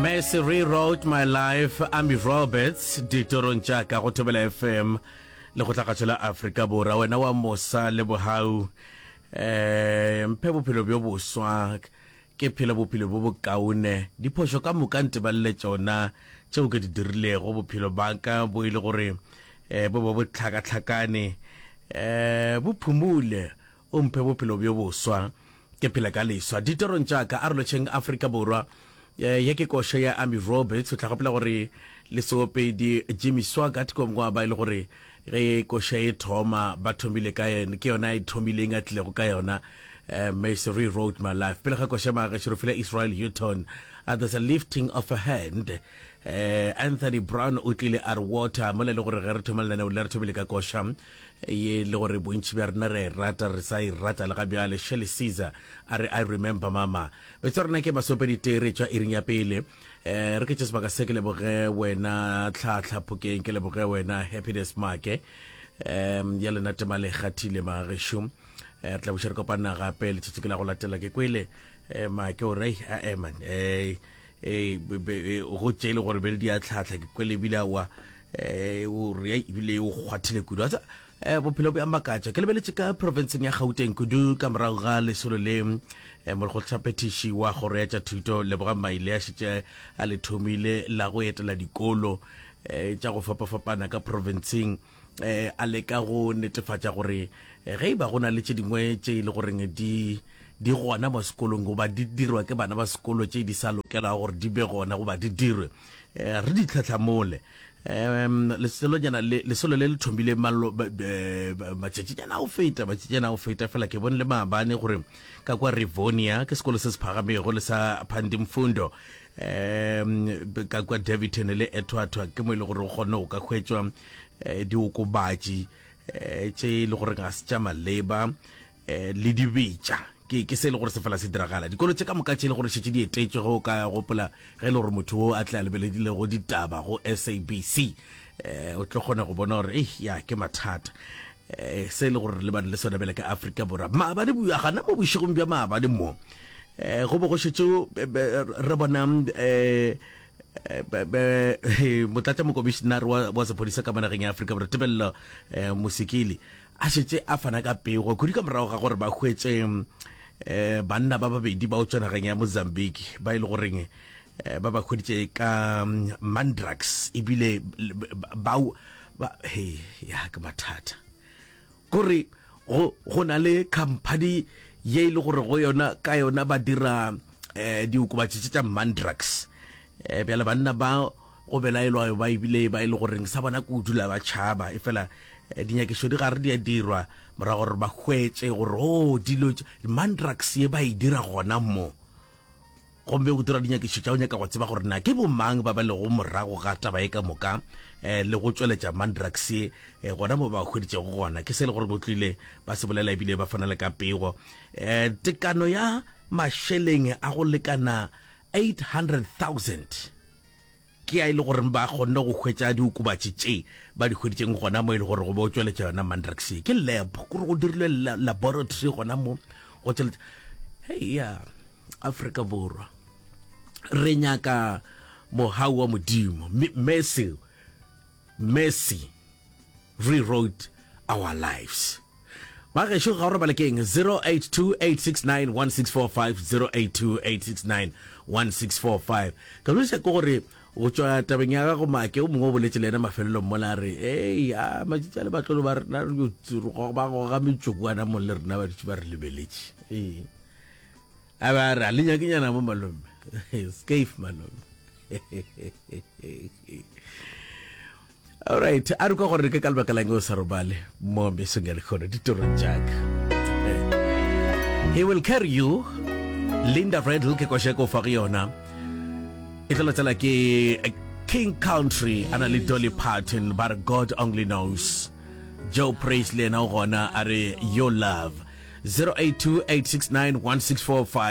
Mercy rewrote my life Ami Roberts ditorong tša ka go thobela FM le go tlagatšo la Afrika Borwa wena wa mosa le bohau eh mphe bophelo bjo boswa ke phele bophelo bo bokaone diphošo ka moka ntebalele tšona tšeo ke di dirilego bophelo baka bo ile e gore eh bo bo botlhakatlhakane eh bo phumule O mphe bophelo bjo boswa, ke phele ka leswa ditorong tša ka. Arolotšheng Afrika Borwa. Ye ke koša ya Amy Roberts. O tla gopola gore le seopedi Jimmy Swaggart ko ngwa ba e le gore ge koša e thoma ba thomile ka yena, ke yona a e thomileng a tlilego ka yona. Mercy rewrote my life. Pele ga koša Maagešo re file Israel Houghton a There's a Lifting of a Hand. Anthony Brown o tlile a re Water, mola e le gore ge re thoma lenaneo le re thomile ka koša. ye le gore bontši bja rena re a e rata re sa e rata le ga bjale shirley caesar a re i remember mama betsa rena ke masopedi tee re tšwa iring ya pele um re ke tše sebaka se ke leboge wena tlhatlha phokeng ke leboge wena happiness make um ya lena tema le kgathile magešo um re tla buša re kopana gape letsatsi ke la go latela ke kwele um make o rei a eman um go tše e le gore be le di a tlhatlha ke kwele ebile awa Eh, o re ebile o kgwathile kudu a tsa eh, bophelo bo ya makatša ke lebeletse ka profenseng ya gauteng kudu ka morago ga lesolo le eh, morekgotshaphethiši wa kgoro ya tša thuto leboga maile a šetše a le thomile la go etela dikolo eh, tša go fapafapana ka profenseng eh, a leka go netefatša gore eh, ge e ba go na le tše dingwe tše e le goreng di di gona mo sekolong goba di dirwa ke bana ba sekolo tše di sa lokelago gore di be gona goba di dirwe Eh, re di tlhatlhamole um leselonyana leselo le le thomile eh, matšatšinyana o feta matšatšinyana o feta fela ke bone le maabane gore ka kwa rivonia ke sekolo se se phagamego le sa pandimfundo um ka kwa daviton le ethwathwa ke mo e le gore o kgone go ka hwetswa um diokobatši um tše e le gore ga se tša maleba um le di betša ke ke se e le gore se fela se diragala dikolo tše ka moka tše e le gore šetse di etetšwe go ka gopola ge e le gore motho o a tla lebeledilego ditaba go sabc um o tlo kgona go bona gore ei ya ke mathata um se e le gore le bane le sone bele ka afrika borwa maabane bua gana mo bošegong bja maabane mo um go bo go šetse re bona um motlatša mokomišenare wa sephodisa ka manageng ya afrika borwa tebelelo um mosekele a šetse a fana ka pego kudu ka morago ga gore ba hwetse um banna ba babedi ba o tswenageng ya mozambique ba e le goreng Eh, ba ba kgoditse ka mm, mandrax ebile bao ba he ya ke mathata kore go go na le company ye e le gore go yona ka yona ba dira eh diokobatši tša mandrax eh bjale banna ba Go belaelwa ba e bile ba e le goreng sa bona ke go dula ba tšhaba, efela dinyakišo di gare di a dirwa morago gore ba hwetše gore o oh, dilo mandrax ye ba e dira gona mo gomme go dira dinyakišo tša go nyaka go tseba gore na ke bomang ba ba lego morago ga taba e ka moka um le go tšweletša mandrax ye um gona mo ba hweditšego gona ke se le gore go tlile ba se bolela ebile ba fana le ka pego um tekano ya mašeleng a go lekana 800 000 Ke ya e le goreng ba kgonne go hwetša diokobatši tše ba di hweditšeng gona mo e le gore go bo tšweletša yona mandrax ye ke lab kore go dirilwe laboratory gona mo go tšweletša hei ya afrika borwa re nyaka mohau wa modimo mme seo Mercy rewrote our lives. Ba gešo ga o re ba lekeng 0828691645 0828691645 ka lwisa ke gore go tšwa tabeng ya gago make o mongwe o boletse le ena mafelelong mola a re ei a matsitsi a le batlolo ba rena ba goga metsoko ana mong le rena ba dutse ba re lebeletše ee A be a re, A le nyake nyana mo malome? Skaife malome. Alright, a re kwa gore ke ka lebaka lang o sa robale mo mesong ya lekgono ditorong jaaka. He will carry you. Linda Redl ke kwasheko fa go yona. E tla tsela ke King Country ana le Dolly Parton ba God only knows. Joe Praise le yena o gona a re Your Love 0828691645